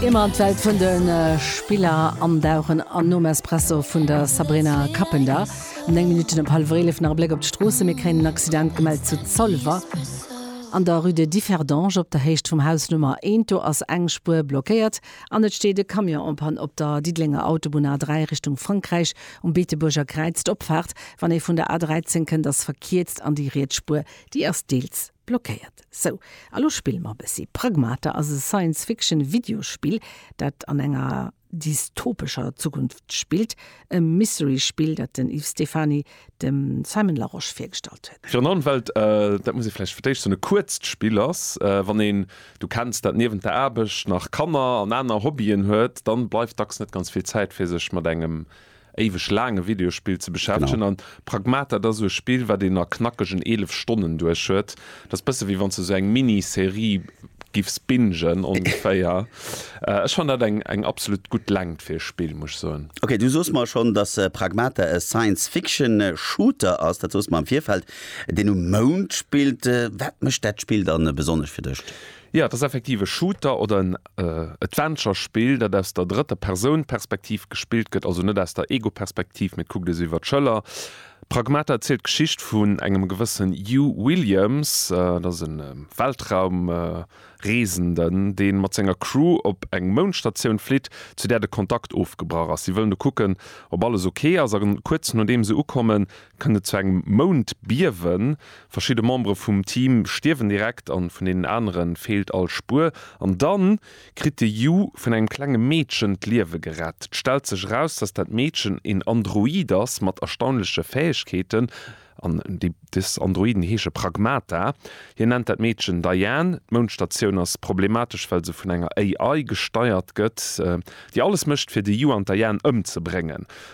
Ier mer an d'Welt vun de Spiller andauchen an nom Espresso vun der Sabrina Cappender um 9 Minutten op hallef eelef nach e Bléck op d'Stroossen. Mir kréien en Accident gemellt zu Zolwer an der Rue de Differdange op der Héicht vum Haus Nummer 1. Do ass eng Spuer blockéiert an et steet e Camion en Panne op der Diddelenger Autobunn A3 Richtung Frankräich um Beetebuerger Kräiz. D'Opfaart, wann ee vun der A13 kënnt, ass verkierzt an déi riets Spuer, déi ass deels. Blockéiert. Sou, a lo spille mer e bëssi. Pragmata ass e Science-Fiction-Videospill, dat an enger dystopescher Zukunft spillt. E Mystery-Spill, dat den Yves Stephany dem Simon Larosche virgestallt huet. Fir an der Ëmwelt, dat muss ee vläicht fir d'éischt soen, e kuerzt Spill ass. Wann een, Du kenns dat, niewent der Aarbecht nach Kanner an aner Hobbyen huet, dann bleift dacks net ganz vill Zäit, fir sech mat engem éiweg laang e Videospill ze beschäftegen an Pragmat dat ass sou e Spill wat een a knackegen 11 Stonnen duerch huet. Dat ass bësse wéi wanns de sou eng Mini-Serie giffs bingen ongeféier. Ech fannen dat eng eng absolut gutt Längt fir e Spill muss ech soen. Ok, du soos mer schonn dass Pragmata e Science Fiction Shooter ass, dat soos mer am Virfeld, deen um Mound spillt. Wat mécht dat Spill dann besonnesch fir dech? Jo, et ass effektiv e Shooter oder en Adventure-Spill, dat aus der drëtter Persoun Perspektiv gespillt gëtt, also net aus der Ego-Perspektiv, mee et kuckt ee sou iwwer d'Schëller. Pragmata erzielt d'Geschicht vun engem gewëssen Hugh Williams, dat ass e Weltraumreesenden, dee mat senger Crew op eng Moundstatioun flitt, zu där de Kontakt ofgebrach ass. Si wëllen do kucken, ob alles ok ass, a kuerz nodeem se ukommen, kënnt et zu engem Moundbiewen. Verschidde Membere vum Team stierwen direkt an vun deenen anere feelt all Spuer. An da kritt de Yu vun engem klenge Meedchen d'Liewe gerett. Et stellt sech eraus, dass dat Meedchen een Android ass mat erstaunleche Fäegkeeten. An des Androiden heesche Pragmata. Hien nennt dat Meedchen Diane. D'Moundstatioun ass problematesch, well se vun enger AI gesteiert gëtt, déi alles mécht, fir de Yu an d'Diane ëmzebréngen.